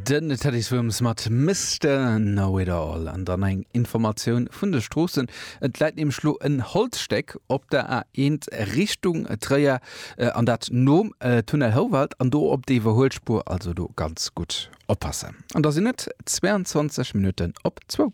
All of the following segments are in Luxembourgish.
Den Teddy Swims mat Mister Know It All an dann eng Informatioun vun de Stroossen. Et läit nämlech lo en Holzstéck op der A1 Richtung Tréier äh, an dat nom äh, Tunnel Houwald an do op der Iwwerhuelspuer, also do ganz gutt oppassen. An da sinn et 22 Minutten op zwou.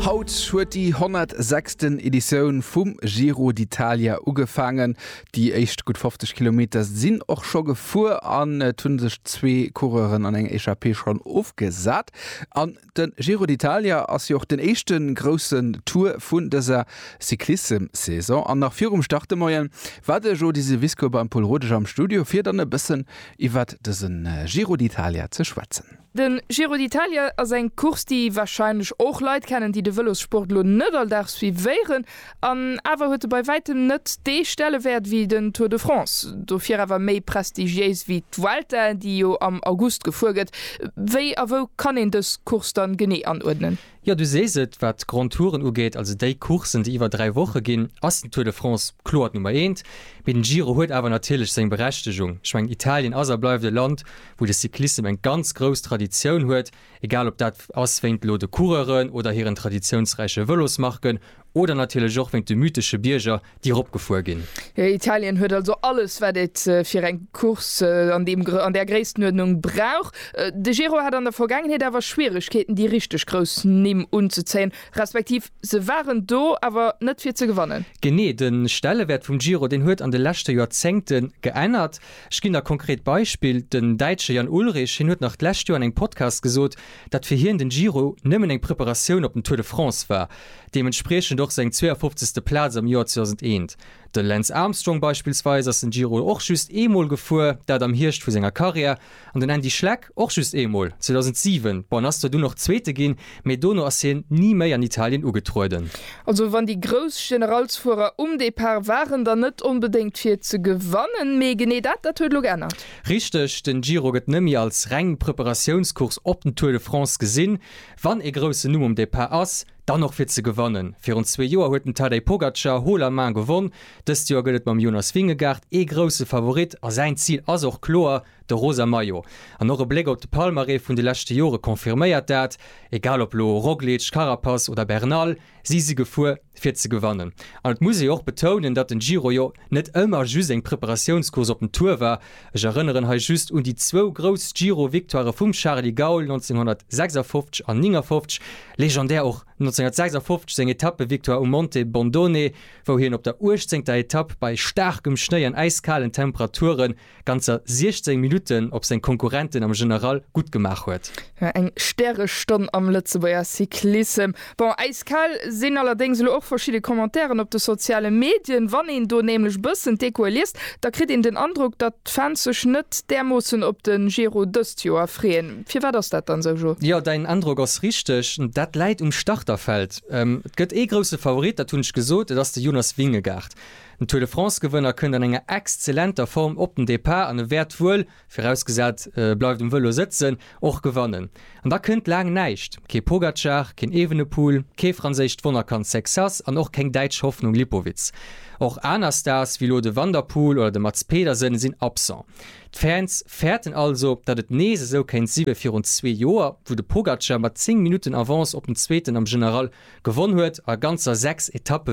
Haut huet déi 106. Editioun vum Giro d'Italia ugefaangen. Déi éischt gutt 50 Kilometer sinn och scho gefuer an et hu sech zwee Coureuren an eng Echappée schonn ofgesat. An de Giro d'Italia ass jo och den éischte groussen Tour vun dëser Cyclissem-Saison. An nach virum Start de Moien war de Jody Syvisco beim Pol Rodesch am Studio fir dann e bëssen iwwert dësen Giro d'Italia ze schwätzen. Den Giro d'Italia ass eng Course déi wahrscheinlech och Leit kennen déi de Vëlossport lo net all Dag suivéieren, an awer huet e bei wäitem net dee Stellewäert wéi den Tour de France, dofir awer méi prestigiéis wéi d'Vuelta déi jo am August gefuer gëtt. Wéi a wou kann een dës Course dann genee anuerdnen? Jo, du sees et, wat d'Grands Touren ugeet, also déi Courssen, déi iwwer dräi Woche ginn, ass den Tour de France kloer d'Nummer eent. Mee den Giro huet awer natierlech seng Berechtegung. Ech mengen, Italien ass a bleift e Land, wou de Cyclissem eng ganz grouss Traditioun huet, egal ob dat ass wéint elo de Coureuren oder hiren traditiounsräiche Vëlosmarken Oder natierlech och wéint de mythesche Bierger, déi eropgefuer ginn. Italien huet also alles, wat et fir eng Course an deem, an där Gréisstenuerdnung brauch. De Giro hat an der Vergaangenheet awer Schwieregkeeten, déi richteg grouss Nimm unzezéien, respektiv se waren do, awer net fir ze gewannen. Genee, de Stellewäert vum Giro, deen huet an de leschte Joerzéngte geännert. Ech ginn der konkret Beispill, Den Däitsche Jan Ullrich, hien huet nach d'lescht Joer an engem Podcast gesot, dat fir hien den Giro nëmmen eng Preparatioun op den Tour de France war, deementspriechend och seng 52. Plaz am Joer 2001. De Lance Armstrong beispillsweis ass den Giro och just eemol gefuer, dat am Hierscht vu senger Karriär, an den Andy Schleck och just eemol, 2007. Bon, en ass zwar dunn och Zweete ginn, mee dono ass hien ni méi an Italien ugetrueden. Also wann déi grouss Generalsfuerer um Depart waren, dann net onbedéngt fir ze gewannen, mee genee dat, dat huet elo geännert. Richteg, den Giro gëtt nëmmi als reng Preparatiounscourse op den Tour de France gesinn. Wann ee groussen Numm um Départ ass, dann och fir ze gewannen. Virun zwee Joer huet den Tadej Pogacar haut la main gewonn. Dëst Joer gëtt et mam Jonas Vingegaard ee grousse Favorit a säin Zil ass och kloer de rosa Maillot. An och e Bléck op de Palmarès vun de leschte Jore confirméiert dat. Egal op lo Roglic, Carapaz oder Bernal, si si gefuer. fir ze gewannen. An et muss ee jo och betounen, datt den Giro jo net ëmmer just eng Preparatiounscourse op den Tour war. Ech erënneren hei just un déi zwou grouss Giro-Victoirë vum Charly Gaul 1956 an 59, legendär och 1956 seng Etappe-Victoire um Monte Bondone, wou hien op der uechtzéngter Etapp bei staarkem Schnéi an äiskalen Temperaturen ganzer 16 Minutten op seng Konkurrenten am General gutt gemaach huet. Jo, eng Stärestonn am Lëtzebuerger Cyclissem. Bon, äiskal sinn allerdéngs elo och verschidde Commentairen op de soziale Medien. Wann een do nämlech bëssen d'Echoe liest, da kritt een den Androck, datt d'Fans sech net därmoossen op de Giro dëst Joer freeën. Firwat ass dat dann esou, Jo? Jo, däin Androck ass richteg. Dat läit um Starterfeld. Et gëtt ee grousse Favorit, dat hunn ech gesot, et ass de Jonas Vingegaard. Den Tour de France-Gewënner kënnt an enger exzellenter Form op den Depart an e wäert wuel, virausgesat e bleift um Vëlo sëtzen, och gewannen. An da kënnt laang näischt, kee Pogacar, keen Evenepoel, kee franséischt Wonnerkand Sexas an och keng däitsch Hoffnung Lipowitz. Och aner Stars wéi elo de Van der Poel oder de Mads Pedersen sinn absent. D'Fans fäerten also, datt et nees esou kéint si wéi virun zwee Joer, wou de Pogacar mat 10 Minutten Avance op den Zweeten am General gewonn huet a ganzer 6 Etappe